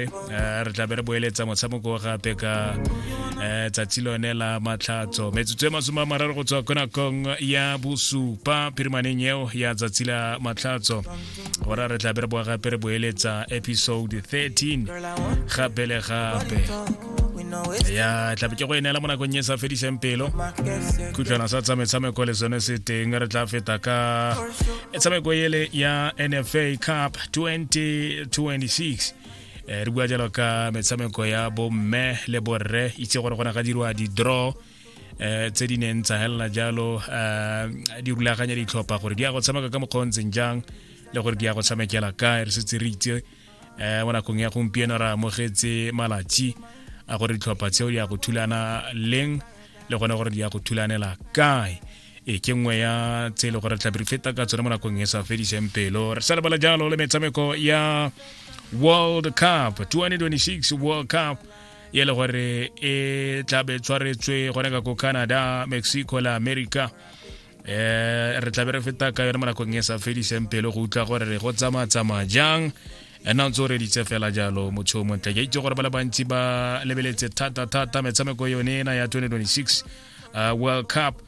eh, re tla be re boeletsa motshameko gape ka eh, tsatsi lone la matlhatso metsotso e masome a mararo go tswa ko nakong ya bosupa phirimaneng eo ya tsatsi la matlhatso gora re tla be re boa gape re boeletsa episode 13 gape le gape ya tlabe ke go e neela mo nakong e sa fediseng pelo khutlwana sa tsa metshameko le sone se teng re tla feta ka tshameko ele ya nfa cup 2026 eh, re bua jalo ka metshameko ya bomme le borre itse gore go ne ga dirwa di-draw eh, tse di neng tsa helela jalo eh, di rulaganya ditlhopha gore di ya go tshameka ka mokgwa o ntseng jang le gore di ya go tshamekela kae re setse re itse eh, mo nakong ya gompieno re amogetse malatsi a gore ditlhopha tseo di ya go thulana leng le gone gore di ya go thulanela kae e ke nngwe ya tse e le gore tlabe re feta ka tsone mo nakong e sa fediseng pelo re sa lebala jalo le metshameko ya world cup 2026 world cup e le gore e tlabe tshwaretswe gone ka ko canada mexico la america um re tlabe re feta ka yone mo nakong e sa fediseng pelo go utlwa gore re go tsamaya-tsamaya jang ena ntse o reditse fela jalo motho o montle ke itse gore ba le bantsi ba lebeletse thata-thata metshameko yone ena ya 2026 uh, world cup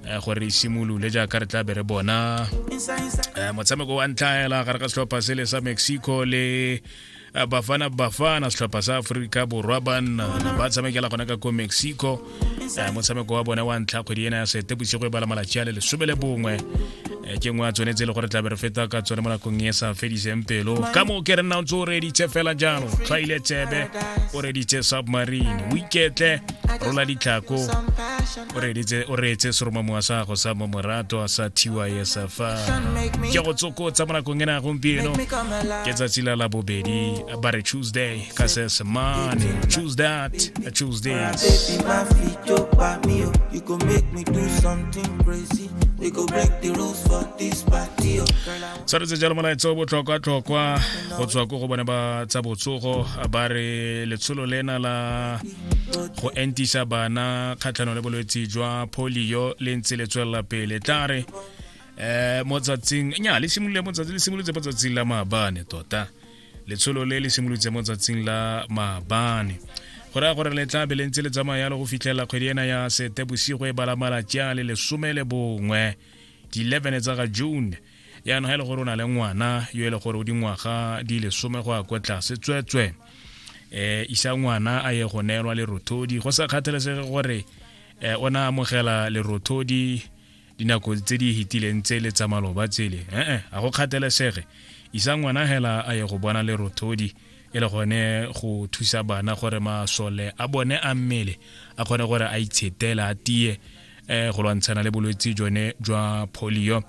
Eh, gore e simolole jaaka re tla be re bona eh, motshameko wa ntlhaela gare ka setlhopha sele sa mexico le eh, bafana bafana setlhopha sa aforika borwa banna ba tshamekela gona ka ko mexico motshameko wa bone wa ntlha kgwedi ena ya sete bosigo e bala malatsi a le lesome le bongwe Eh, ke ngwe a tsone tse e le gore tlabe re feta ka tsone mo nakong e sa fediseng pelo ka moo ke re nna ntse o reditse fela jalo tlhaile tsebe o reditse submarine o iketle rola ditlhako o reetse seromamo wa sago sa mo morato a sa thiwa ye sa fa ke go tsokotsa mo nakong e na gompieno ke tsatsi la labobedi ba re tuesday ka se semane choose that choose this We go break the rules for this party. tshwanetse jalo molaetsa o botlhokwa-tlhokwa go tswa ko go bone ba tsa botsogo ba re letsholo lena la go entisa bana kgatlhanong le bolwetse jwa polio le ntse le tswelela pele tla re um motsatsing nya le simolole motsatsi le simolotse motsatsing la maabane tota letsholo le le simolotse mo tsatsing la maabane go raya gore le tla be le ntse le tsamaya le go fitlhelela kgwedi ena ya setebosigo e bala malatsi a le lesome le bongwe di-11 tsa ga june yaanong ga e le gore o na le ngwana yo e le gore o dingwaga di lesome go ya kwa tlase tsweetswe um isa ngwana a ye go neelwa lerothodi go sa kgathalesege gore um o ne amogela lerothodi dinako tse di hitileng tsele tsa maloba tsele ee a go kgathelesege isa ngwana hela a ye go bona le rothodi e le gone go thusa bana gore masole a bone a mmele a kgone gore a itshetela a tie um go lwantshana le bolwetse jone jwa polio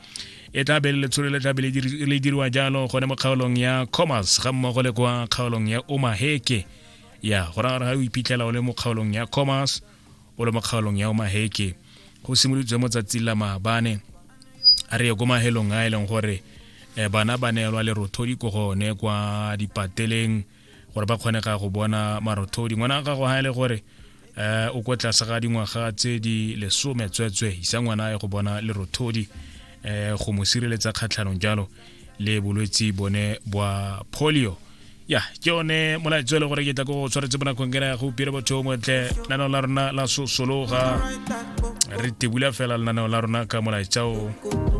e tla be le letsholo le tla be le diriwa jalo gone mo kgaolong ya commerce ga mmogo le kwa kgaolong ya omaheke ya go raya gore ga o iphitlhela o le mo kgaolong ya commerce o le mo kgaolong ya omaheke go simolotswe mo tsatsing la maabane a re ye ko mahelong a e leng gore um bana ba neelwa lerothodi ko gone kwa dipateleng gore ba kgone ga go bona marothodi ngwana wa gago ga e le gore um o ko tlase ga dingwaga tse di lesome tswetswe isa ngwana ye go bona lerothodi um go mo sireletsa kgatlhanong jalo le bolwetsi bone bwa polio ya ke one molaetso e le gore ke tla ko tshwaretse bonakong ke ya go upire batho motle lenaneo la rona la sosologa re tebula fela lenaneo la rona ka molaetsa o